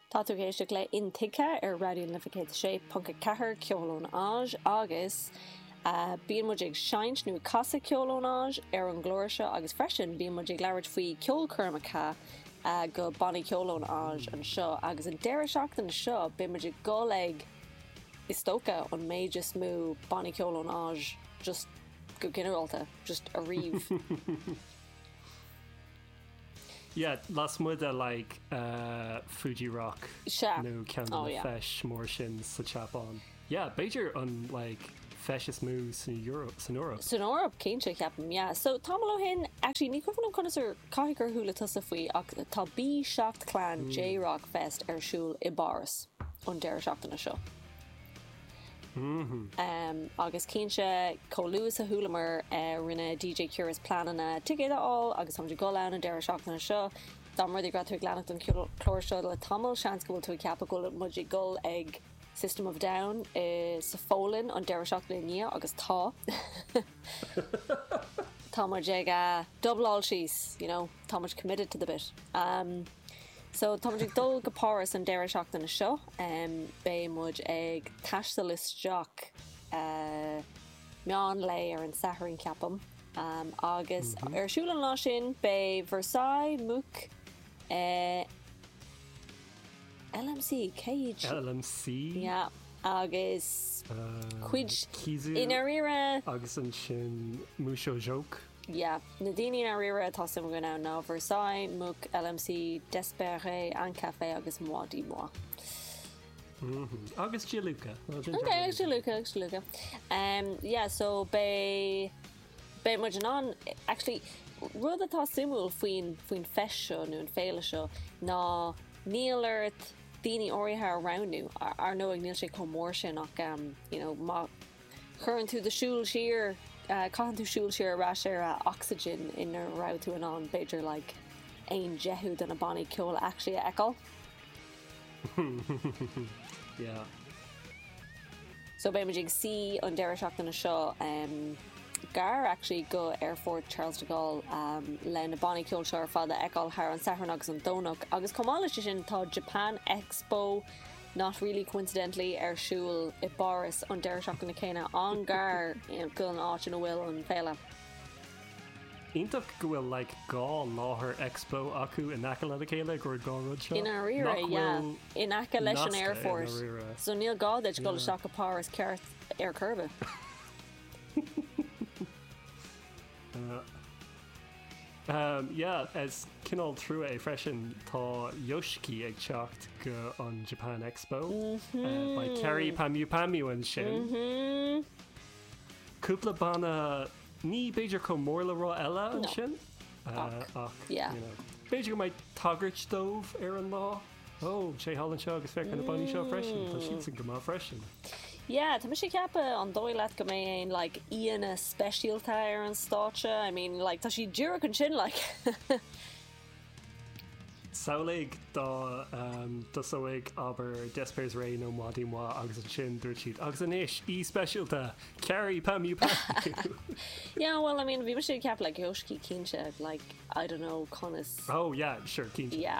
Tá tú ag éisteacht le Intuigthe ar Raidió na Life 106.4, ceol ón Áis, agus bíonn muid ag seinnt nó ag casadh ceoil ón Áis ar an gclár seo agus freisin bíonn muid ag labhairt faoi cheolchoirmeacha de bhannaí ceoil ón Áis anseo agus an deireadh seachtaine seo beidh muid ag dul ag, is dócha, an méid is mó bannaí ceoil ón Áis just go ginearálta just ariamh. Yeah, lasmuigh de like Fuji Rock nó ceann de na feis mór sin sa tSeapáin. Yeah, b'fhéidir an like feis is mó san Eoraip. san Eoraip cinnte, ceapaim, yeah. So, tamall ó shin, actually ní chuimhin liom conas ar chuala tusa faoi ach tá B7 Clan J-Rock Fest ar siúl i bPáras an deireadh seachtaine seo. Agus cinnte, chomh luath is a chualamar, rinne DJ Curious pleananna ticéad a fháil agus tá muid ag dul ann an deireadh seachtaine seo. Dá mba rud é go raibh tú ag leanacht an chlár seo le tamall, seans go bhfuil tú ag ceapadh go bhfuil muid ag dul ag System of a Down sa Pholainn an deireadh seachtaine i ndiaidh, agus tá! Tá muid ag dúbláil síos, you know? Tá muid committed to the bit. Am, so tá muid ag dul go Páras an deireadh seachtaine seo. Am, Beidh muid ag taisteal isteach meán lae ar an Satharn, ceapaim. Am, Agus ar siúl an lá sin, beidh Versailles, MUCC, eh, LM.C, cé hiad sin? LM.C? Yeah, agus cuid, i ndáiríre, eh. Agus ansin Museau Joke? Yeah, Na daoine i ndáiríre atá suim againn iontu ná Versailles, MUCC, LM.C, D'espairsRay, An Cafe agus Moi dix Mois. Agus Jiluka. Ok, agus Jiluka, agus Jiluka. Em, yeah, so beidh, beidh muid in ann, actually, rud atá suimiúil faoin, faoin fest seo nó an féile seo ná níl ort daoine áirithe a roghnú, ar ndóigh níl sé chomh mór sin ach, em, you know, má, Cuireann tú do shúil siar, caitheann tú súil siar ar ais ar Oxegen ina raibh tú in ann, b'fhéidir, like, aon deichiú de na bannaí ceoil actually a fheiceáil. Yeah. So beidh muid ag suí, an deireadh seachtaine seo em, gar actually go Aerfort Charles de Gaulle em, le na bannaí ceoil seo ar fad a fheiceáil thar an Satharn agus an Domhnach agus chomh maith leis sin tá Japan Expo Not really coincidentally ar siúl i bPáras an deireadh seachtaine céanna, an-ghar don áit ina bhfuil an féile. Iontach go bhfuil like dhá láthair Expo acu in aice lena chéile, go raibh dhá rud seo. I ndáiríre, nach bhfuil nasctha i ndáiríre. Yeah. In aice leis an aerfort. So níl gá duit dul isteach go Páras ceart ar chor ar bith. Yeah, is cineál trua é freisin, tá Yoshiki ag teacht go an Japan Expo. Beidh Kyary Pamyu Pamyu ansin. Cúpla banna ní b'fhéidir chomh mór le rá eile ansin, ach b'fhéidir go mbeidh tagairt dóibh ar an lá. Ó, sé thall anseo agus féach ar na bannaí seo freisin, tá siadsan go maith freisin. Yeah, tá mise ag ceapadh, an dóigh leat go mbeidh aon like aíonna speisialta ar an stáitse? I mean, like tá siad díreach ansin like. Samhlaigh do ehm do seó abair D'espairsRay nó Moi dix Mois agus ansin dúirt siad agus anois aoi speisialta, Kyary Pamyu Pamyu. Yeah, well, I mean bhí mise ag ceapadh like Yoshiki cinnte like I don't know conas. Oh yeah, sure, cinnte. Yeah.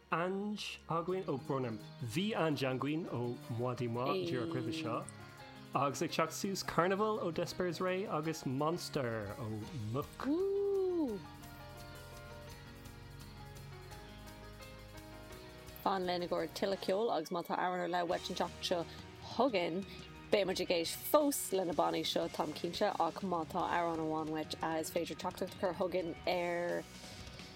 Ange againn ó, brón orm. Bhí Ange againn ó Moi dix Mois díreach roimhe seo agus ag teacht suas Carnival ó D'espairsRay agus Monster ó MUCC. Fan linn i gcomhair tuilleadh ceoil agus má tá amhrán ar leith uait an tseachtain seo chugainn, beidh muid ag éisteacht fós lena bannaí seo, táim cinnte, ach má tá amhrán amháin uait a is féidir teachtaireacht a chur chugainn ar.